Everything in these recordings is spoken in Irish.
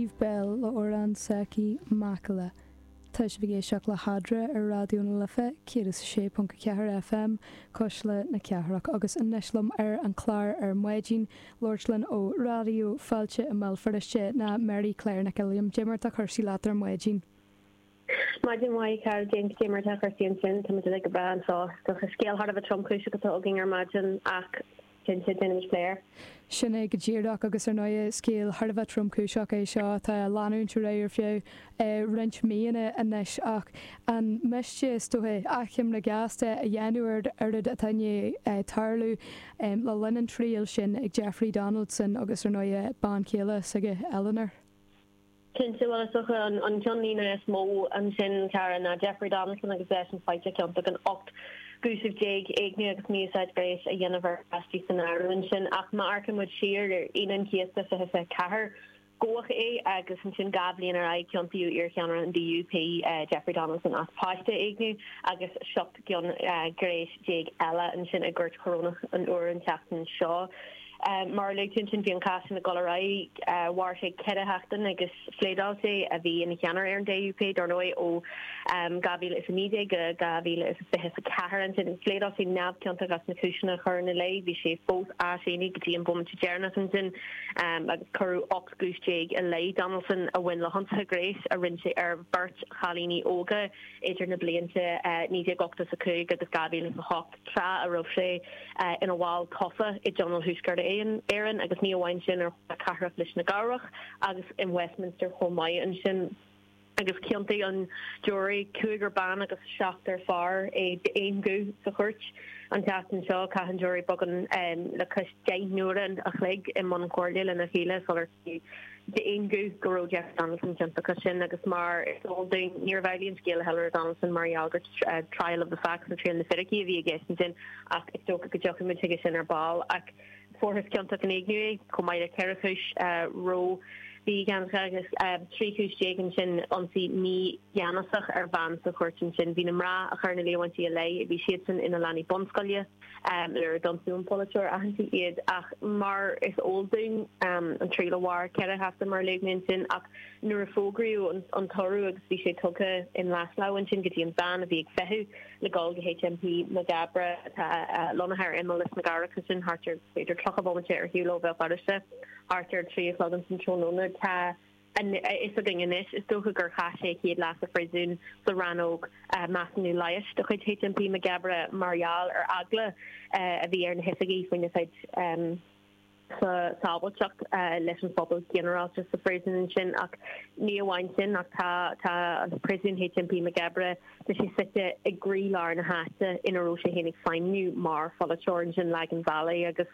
Eve Belle le hamhrán s'aici Macalla tá sibh ag éisteacht le hEadra ar Raidió na Life 106.4 FM cuisle na cathrach agus anois liom ar an chlár ar maidin ag labhairt linn ó Raidió Fáilte i mBéal Feirste ná Mary Claire Nic Uilliam cad é mar atá cúrsaí leat ar maidin. Maidin mhaith, a chara, cinnte, cad é mar atá cúrsaí ansin, táimid uilig go breá anseo. Is dócha scéal thar a bheith tromchúiseach atá againn ar maidin ach cinnte, déanfaimid plé air. Sin é go díreach agus ar ndóighe scéal thar a bheith tromchúiseach é seo atá ag leanúint ar aghaidh ar feadh roinnt míonna anois ach an miste, is dócha, achoimre ghasta a dhéanamh ar an oiread atá i ndiaidh tarlú le linn an triail sin ag Jeffrey Donaldson agus ar ndóighe bean chéile s'aige, Eleanor. Cinnte, bhuel is dócha an ceannlíne is mó ansin cara ná Jeffrey Donaldson agus eisean faighte ciontach in ocht gcúiseamh déag, éigniú agus mí-úsáid gnéis a dhéanamh ar pháistí san áireamh ansin. Ach má amharcann muid siar ar Aoine an Chéasta 2024, gabhadh é agus ansin dhá bhliain ar aghaidh ciontaíodh iarcheannaire an DUP, Jeffrey Donaldson as páiste a éigniú agus seacht gcion gnéis déag eile ansin i gCúirt Chorónach an Iúir an tseachtain seo. Mar a luaigh tú ansin bhí an cás sin ag dul ar aghaidh, mhair sé ceithre sheachtain agus phléadáil sé, a bhí ina cheannaire ar an DUP dar ndóigh ó 2019 go 2024 ansin, phléadáil sé neamhchiontach as na cúiseanna a cuireadh ina leith, bhí sé fós á shéanadh go dtí an bhomaite deireanach ansin agus cuireadh 18 gcúis i leith Donaldson a bhain le hionsaithe gnéis a rinne sé ar bheirt chailíní óga idir na blianta 1985 agus 2008. tráth a raibh sé ina bhall tofa i dTionól Thuaisceart Éireann, agus ní amháin sin, ar Chomhairle Cathrach Lios na gCearrbhach agus in Westminster chomh maith. Ansin, agus chiontaigh an giúiré, cúigear ban agus seachtar fear, é d'aon ghuth sa chúirt. An tseachtain seo, chaith an giúiré beagán le cois deich n-uaire an chloig i mbun comhairle lena chéile sular. d'aon ghuth go raibh Jeffrey Donaldson ciontach as sin agus mar is eol dúinn níorbh amhlaidh an scéal do Eleanor Donaldson mar gheall gur trial of the facts nó triail na fíricí a bhí i gceist ansin ach is dócha go dtiocfaidh muid chuige sin ar ball ach fuarthas ciontach in éigniú é chomh maith le ceithre chúis ró-mhígheanas agus trí chúis déag ansin ionsaí mígheanasach ar bhean sa chúirt ansin bhí na mná a chuir na líomhaintí ina leith bhí siadsan ina leanaí bunscoile Nuair a d'ionsaigh an polaiteoir aitheanta iad ach mar is eol dúinn an triail a mhair ceithre sheachtain mar a luaigh mé ansin ach nuair a fógraíodh an toradh agus bhí sé tugtha i nglais lámh ansin go dtí an veain a bhí ag feitheamh le gabháil go HMP Maghaberry atá lonnaithe ar imeall Lios na gCearrbhach ansin thart ar b'fhéidir tríocha bomaite ar shiúl ó Bhéal Feirste thart ar trí a chlog ansin tráthnóna tá a fhios againn anois, is dócha gur chaith sé a chéad lá sa phríosún sa rannóg mheasúnú leighis de chuid HMP Maigh gCabraí mar gheall ar eagla a bhí ar na hoifigigh faoina chuid sábháilteacht leis an phobal ginearálta sa phríosún ansin. Ach ní amháin sin ach tá an príosún HMP Maigh gCabraí, tá sé suite i gcroí lár na háite ina raibh sé féin ag feidhmniú mar pholaiteoir ansin, Lagan Valley agus.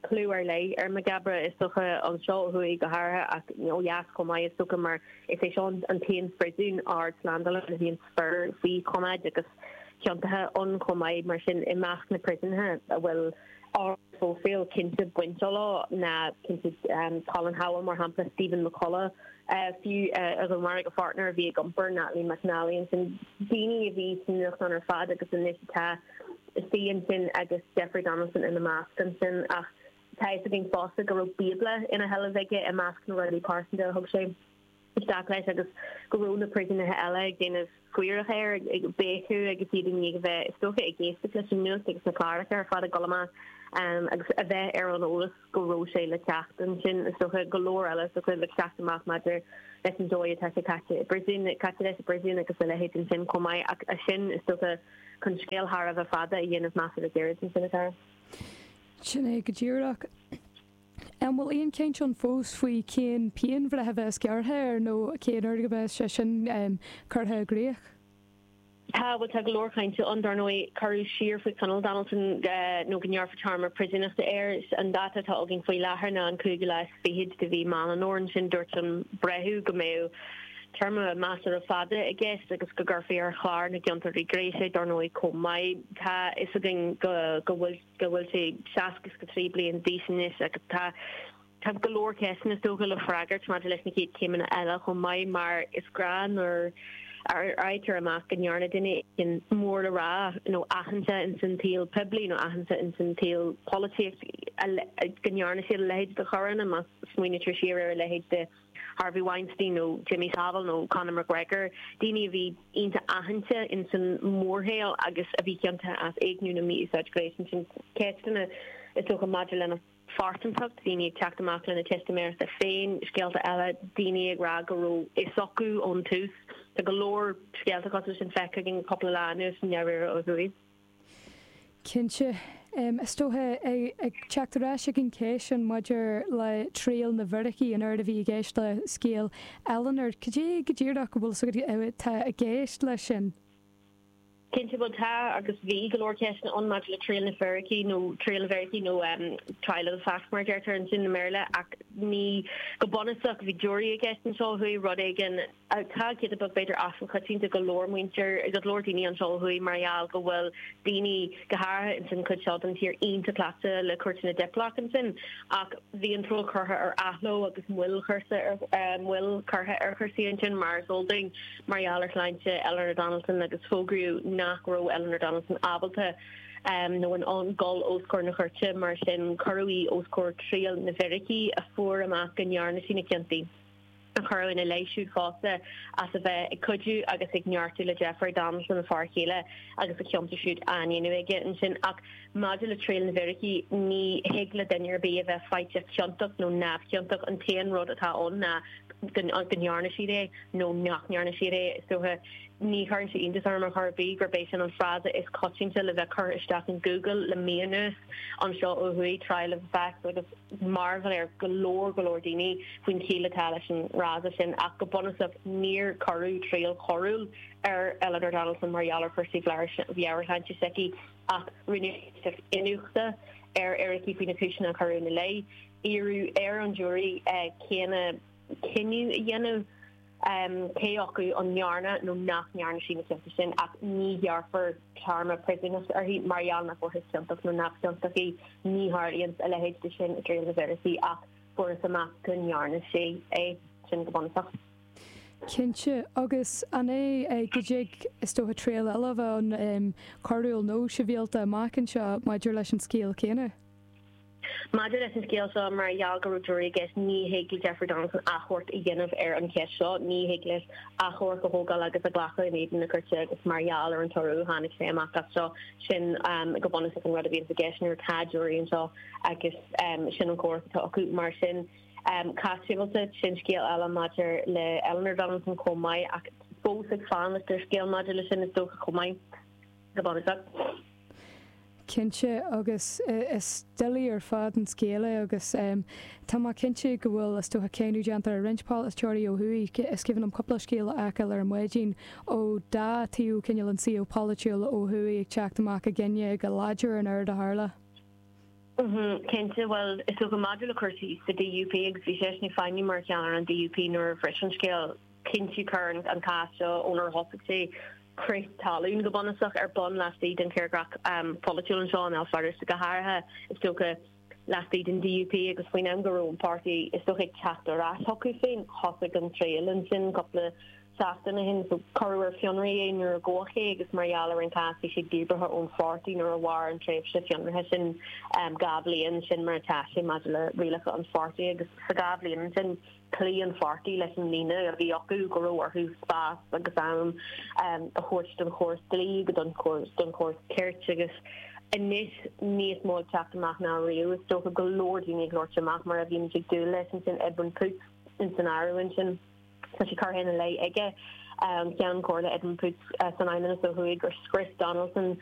clú ar leith ar Maigh gCabraí, is dócha, anseo ó thuaidh go háirithe ach ó dheas chomh maith, is dócha, mar is é seo an t-aon phríosún ardslándála a bhíonn fir faoi choimeád agus ciontaithe ann chomh maith. Mar sin, i measc na bpríosúnaithe a bhfuil ard-phróifíl cinnte bainte leo ná cinnte Colin Howell, mar shampla, Stephen McCullagh, fiú, a dhúnmharaigh a pháirtnéir a bhí ag iompar, Natalie McNally, ansin daoine a bhí sna nuachtáin ar fad agus anois atá. Istigh ansin agus Jeffrey Donaldson ina measc ansin ach tá fhios againn fosta go raibh bíobla ina sheilbh aige i measc na rudaí pearsanta a thug sé isteach leis agus go raibh na príosúnaithe eile ag déanamh scairteadh air ag béiceadh agus iad i ndiaidh a bheith is dóiche ag éisteacht leis an nuacht agus na cláracha ar fad ag dul amach agus a bheith ar an eolas. go raibh sé le teacht. Ansin, is dócha, go leor eile is dócha le teacht amach maidir leis an dóigh atá sé caite i bpríosún, caite leis i bpríosún agus a leithéid ansin chomh maith ach a sin, is dócha, chun scéal thar a bheith fada a dhéanamh measartha gairid ansin atá. Sin é go díreach. An bhfuil aon chaint ann fós faoi cén pianbhreith a bheas gearrtha air nó cén uair a bheas sé sin curtha i gcrích? Tá, bhuel, tá go leor chainte ann, dar ndóigh, cuireadh siar faoi choinneáil Donaldson nó go ngearrfar téarma príosúnachta air, an dáta atá againn faoi láthair ná an cúigiú lá is fichead de mhí Meán an Fhómhair, ansin dúirt an breitheamh go mbeadh téarma measartha fada i gceist agus go gcuirfí ar chlár na gciontóirí gnéis é, dar ndóigh, chomh maith. Tá fhios againn go bhfuil sé seasca is a trí bliain d'aois anois agus tá Tá go leor ceisteanna is dócha le freagairt maidir leis na chéad chéimeanna eile chomh maith mar is gnách nuair a fhaightear amach go ndearna duine éigin mór le rá nó aitheanta ins an tsaol poiblí nó aitheanta ins an tsaol polaitíocht go ndearna siad a leithéid de choireanna má smaoinítear siar ar a leithéid de Harvey Weinstein nó Jimmy Savile nó Conor McGregor daoine a bhí iontach aitheanta ins an mórshaol agus a bhí ciontach as éigniú nó mí-úsáid ghnéis sin ceisteanna is dócha maidir lena phearsantacht, daoine ag teacht amach lena teistiméireachta féin, scéalta eile, daoine ag rá go raibh fhios acu ón tús. Tá go leor scéalta cosúil sin feicthe againn an cúpla lá anuas i ndáiríre ó thuaidh. Cinnte. Is dócha ag teacht ar ais ag an cheist sin maidir le triail na bhfíricí, an oiread a bhí i gceist le scéal Eleanor, cad é go díreach a bhfuil 's agat atá i gceist leis sin? Cinnte, bhuel, tá agus bhí go leor ceisteanna ann maidir le triail na bhfíricí, nó triail na bhfíricí, nó trial of the facts mar a deirtear ansin i mBéarla, ach ní go bunúsach a bhí jury i gceist anseo ó thuaidh, rud éigin atá giota beag b'fhéidir as an choitiantacht ag go leor muintir, ag go leor daoine anseo ó thuaidh mar gheall go bhfuil daoine, go háirithe ins an chuid seo den tír, iontach cleachta le cúirteanna Diplock ansin. Ach bhí an triail curtha ar athló agus moill curtha ar chúrsaí ansin mar is eol dúinn. mar gheall ar shláinte Eleanor Donaldson agus fógraíodh nach raibh Eleanor Donaldson ábalta nó in ann dul os comhair na cúirte, mar sin cuireadh í os comhair triail na bhfíricí a fuair amach go ndearna sí na cionta a cuireadh ina leith siúd fosta as a bheith ag cuidiú agus ag neartú le Jeffrey Donaldson, a fear céile, agus a chionta siúd á ndéanamh aige ansin. Ach Maidir le triail na bhfíricí, ní thig le duine ar bith a bheith faighte ciontach nó neamhchiontach, an t-aon rud atá ann ná go ndearna siad é nó nach ndearna siad é. Is dócha, ní chuireann sé iontas orm ar chor ar bith, gurb é sin an frása is coitianta le bheith curtha isteach in Google le mí anuas anseo ó thuaidh, trial of the facts, agus mearbhall ar go leor go leor daoine faoin chiall atá leis an fhrása sin, ach go bunúsach, níor cuireadh triail choiriúil ar Eleanor Donaldson mar gheall ar chúrsaí meabhairshláinte s'aici. ach rinneadh iniúchadh ar fhíricí faoi na cúiseanna a cuireadh ina leith. Iarradh ar an jury céanna cinneadh a dhéanamh cé acu an ndearna nó nach ndearna sí na cionta sin ach ní ghearrfar téarma príosúnachta uirthi mar gheall nach bhfuarthas ciontach nó neamhchiontach í. Ní tharlaíonn a leithéid de sin i dtriail na bhfíricí ach fuarthas amach go ndearna sí é sin go bunúsach. Cinnte. Agus an é go dtig, is dócha, triail eile a bheith ann, coiriúil nó sibhialta, amach anseo maidir leis an scéal céanna? Maidir leis an scéal seo mar gheall go raibh jury i gceist, ní thig le Jeffrey Donaldson achomharc a dhéanamh ar an cheist seo, ní thig leis achomharc a thógáil agus a ghlacadh in éadan na cúirte agus mar gheall ar an toradh a tháinig sé amach anseo sin go bunúsach an rud a bhíonns i gceist nuair atá jury anseo agus sin an córas atá acu mar sin Cás sibhialta, sin scéal eile maidir le Eleanor Donaldson chomh maith ach fós ag fanacht ar scéal maidir le sin is dócha chomh maith go bunúsach. Cinnte agus is doiligh ar fad an scéal é agus tá mé cinnte go bhfuil is dócha cáineadh déanta ar roinnt polaiteoirí ó thuaidh, is cuimhin liom cúpla scéal a fheiceáil ar maidin ó dhá taobh cineál an saol polaitiúil ó thuaidh ag teacht amach i gcoinne go láidir an rud a tharla. Cinnte, bhuel, is dócha maidir le cúrsaí sa DUP agus bhí seisean ag feidhmiú mar cheannaire an DUP nuair a bhris an scéal cinnte chuir an cás seo ónar thosaigh sé crith talún go bunúsach ar bun laistigh den tírdhreach pholaitiúil anseo i mBéal Feirste go háirithe is dócha laistigh den DUP agus faoin am go raibh an páirtí is dócha ag teacht ar ais chucu féin thosaigh an triail ansin cúpla seachtain ó shin. Cuireadh ar fionraí é nuair a gabhadh é agus mar gheall ar an cás bhí sé díbeartha ón pháirtí nuair a mhair an tréimhse fionraithe sin dhá bhliain. Sin mar atá sé maidir le rialacha an pháirtí agus sa dhá bhliain sin chloígh an pháirtí leis an líne a bhí acu go raibh orthu spás agus am a thabhairt don chóras dlí agus don chóras cirt agus anois níos mó ag teacht amach ná riamh is dócha go leor daoine ag labhairt amach mar a bhímid ag dúil leis ansin Edwin Poots in san áireamh ansin. Tá sé curtha ina leith ag an Cheann Comhairle Edwin Poots san Fheidhmeannas ó thuaidh, gur scrios Donaldson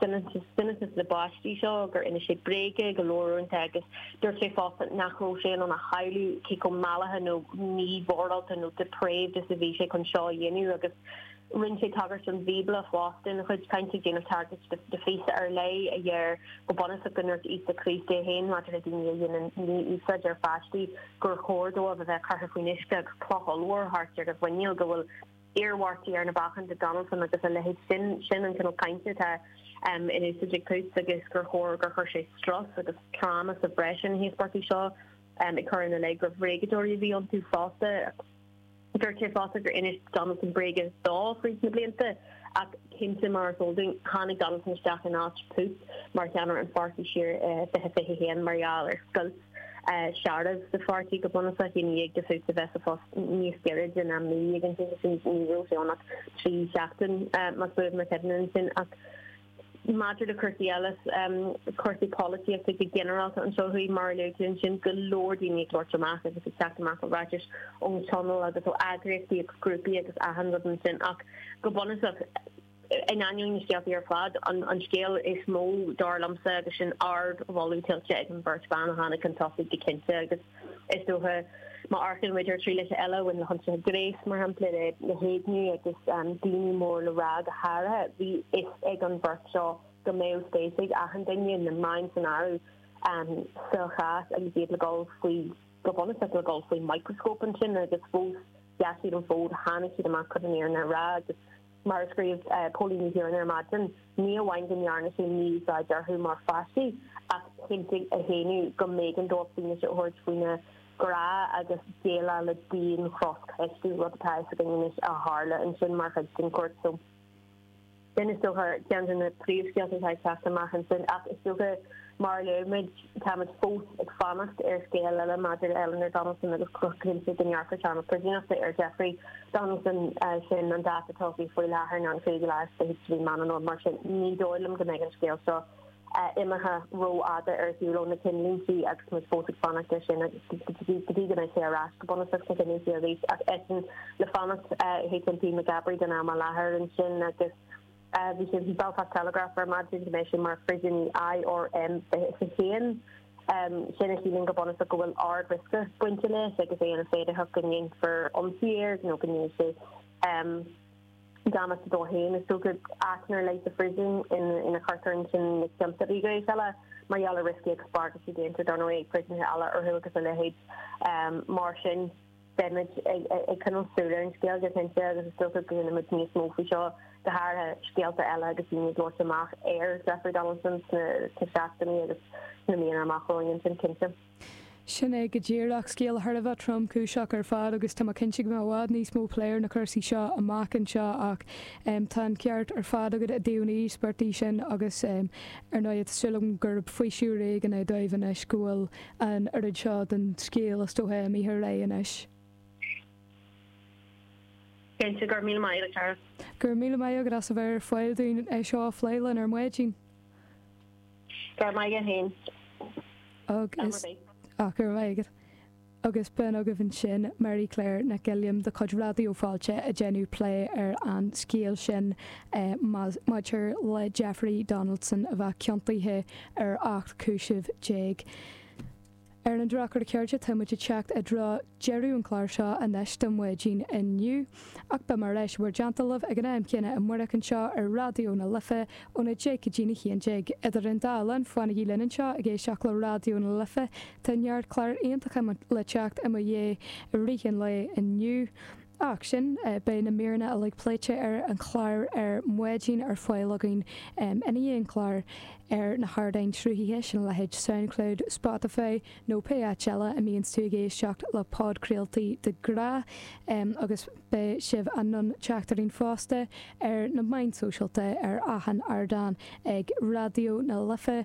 soineantas na bpáistí seo, gur inis sé bréaga go leor uaireanta agus dúirt sé fosta nach raibh sé in ann a shamhlú cé chomh mallaithe nó mímhorálta nó 'depraved' is a bhí sé chun seo a dhéanamh agus Rinne sé tagairt don Bhíobla fosta ina chuid cainte, ag déanamh tagairt do phíosa ar leith a deir go bunúsach go ndúirt Íosa Críost é féin maidir le daoine a dhéanann mí-úsáid ar pháistí gur chóir dóibh a bheith curtha faoin uisce agus cloch ollmhór thart ar a mhuiníl go bhfuil iarmhairtí ar na bacáin do Donaldson agus a leithéid. Sin sin an cineál cainte atá um, in úsáid ag Poots agus gur chóir gur chuir sé strus agus tráma sa bhreis ar na híospartaigh seo um, ag cur ina leith gur bhréagadóirí a bhí iontu fosta Dúirt sé fosta gur inis Donaldson bréaga dó fríd na blianta ach cinnte mar is eol dúinn, tháinig Donaldson isteach in áit Poots mar cheannaire an pháirtí siar i 2021 mar gheall ar scoilt searbh sa pháirtí go bunúsach i ndiaidh do Phoots a bheith sa phost níos giorra ná mí ag an tráth sin ní raibh sé ann ach trí seachtaine más buan mo chuimhne ansin ach Maidir le cúrsaí eile, cúrsaí polaitíochta go ginearálta anseo ó thuaidh, mar a luaigh tú, ansin go leor daoine ag labhairt amach agus ag teacht amach le ráitis ón Tionól agus ó eagraíochtaí agus grúpaí agus achan rud ansin ach go bunúsach, in ainneoin na scéaltaí ar fad, an scéal is mó, dar liomsa, agus sin ard-mholadh tuillte ag an bheirt bhan a tháinig chun tosaigh go cinnte agus. Is dócha, má amharcann muid ar thrialacha eile a bhain le hionsaithe gnéis, mar shampla, le na héigniú agus daoine mór le rá, go háirithe, bhí a fhios ag an bheirt seo go mbeadh spéis ag achan duine, na meáin san áireamh, sa chás agus iad le dul faoi, go bunúsach, le dul faoi mhicreascóp ansin. Agus fós, sheas siad an fód, tháinig siad amach, chun an fhírinne a rá, agus Mar a scríobh Póilín Ní Chiaráin ar maidin, ní amháin go ndearna sé mí-úsáid orthu mar pháistí ach chinntigh a shéanadh go mb'éigean dóibh fianaise a thabhairt faoina gcrá agus déileáil le dian-chroscheistiú, rud atá a fhios againn anois a tharla ansin mar chuid den chúirt so. Sin, is dócha, ceann de na príomhscéalta atá ag teacht amach ansin ach is dócha, mar a léimid, Táimid fós ag fanacht ar scéal eile maidir le Eleanor Donaldson agus go cinnte go ngearrfar téarma príosúnachta ar Jeffrey Donaldson, sin an dáta atá faoi faoi láthair ná an 5ú lá is fichead de mhí Mheán Fhómhair, mar sin ní dóigh liom go mbeidh an scéal seo imithe rófhada ar shiúl ó na cinnlínte agus muid fós ag fanacht air sin agus go dtí go mbeidh sé ar ais go bunúsach sna cinnlínte arís ach eisean le fanacht in HMP Maghaberry don am i láthair ansin agus Bhí sé sa Belfast Telegraph ar maidin go mbeidh sé mar phríosúnaí IRM 21. Sin a chiallaíonn go bunúsach go bhfuil ard-riosca bainte leis agus é ina fhéidearthacht go ndéanfar ionsaí air nó go ndéanfaidh sé damáiste dó féin. Is dócha áit ar leith sa phríosún ina gcuirtear ansin na cionta íogaire is eile mar gheall ar rioscaí agus bagairtí déanta dar ndóigh ag príosúnaithe eile orthu agus a leithéid. Mar sin Beimid ag coinneáil súil ar an scéal go cinnte agus is dócha go gcluinfimid níos mó faoi seo, go háirithe scéalta eile agus daoine ag labhairt amach ar Jeffrey Donaldson sna seachtainí agus sna míonna amach romhainn ansin cinnte. Sin é go díreach, scéal thar a bheith tromchúiseach ar fad agus tá mé cinnte go mbeidh i bhfad níos mó plé ar na cúrsaí seo amach anseo ach tá an ceart ar fad agat i dtaobh na n-íospartach sin agus ar ndóigh tá súil agam gurb faoiseamh éigin é dóibh anois go bhfuil an oiread seo den scéal is dócha a mbítear réidh anois. Cinnte, go raibh míle maith agat, a Dhara. Go raibh míle maith agat as a bheith ar fáil dúinn é seo a phlé linn ar maidin. Go raibh maith agat fhéin. Agus, ach go raibh maith agat. Agus b'in agaibh ansin, Mary Claire Nic Uilliam de chuid Raidió Fáilte ag déanamh plé ar an scéal sin maidir le Jeffrey Donaldson a bheith ciontaithe ar ocht gcúiseamh déag. Ar an drochuair chairde, tá muid ag teacht i dtreo deireadh an chláir seo anois do mhaidin inniu, ach beidh mé ar ais in bhur dteannta libh ag an am chéanna amárach anseo ar Raidió na Life ón 10 go dtí'n 11. Idir an dá linn, fanaigí linn anseo ag éisteacht le Raidió na Life, tá neart cláir iontacha le teacht i mo dhiaidh i rith an lae inniu. Ach sin, beidh na míreanna uilig pléite ar an chlár ar maidin ar fáil againn i ndiaidh an chláir ar na hardáin sruthaithe sin a leithéid Soundcloud, Spotify nó pé áit eile a mbíonns tú ag éisteacht le podchraoltaí de ghnáth. Agus beidh sibh in ann teacht orainn fosta ar na meáin sóisialta ar achan ardán ag Raidió na Life.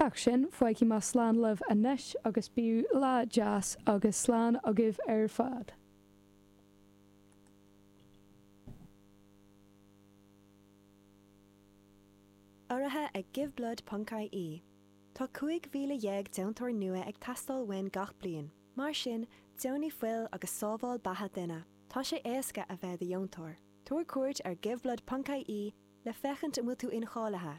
Ach sin fágfaidh mé slán libh anois agus bíodh lá deas agus slán agaibh ar fad. Urraithe ag Giveblood Ponc IE. Tá 15,000 deontóir nua ag teastáil uainn gach bliain. Mar sin, deonaigh fuil agus sábháil beatha duine. Tá sé éasca a bheith i do dheontóir. Tabhair cuairt ar Giveblood Ponc IE le féachaint an bhfuil tú incháilithe.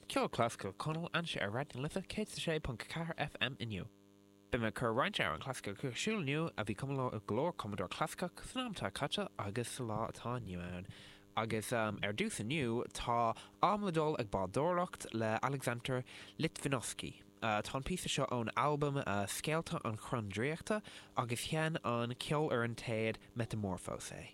Ceol clasaiceach Conal ainnise ar Raidió na Life 106.4 FM inniu. Beidh mé ag cur roinnt amhrán clasaiceach ar siúl inniu a bhí cumtha le go leor cumadóir clasaiceach san am atá caite agus sa lá atá inniu ann. Agus ar dtús inniu táimid le dul ag bádóireacht le Aleksandr Litvinovsky. Tá an píosa seo ón albam Scéalta an Chrainn Draíochta agus sheinn an Ceolfhoireann Téad Metamorphósé.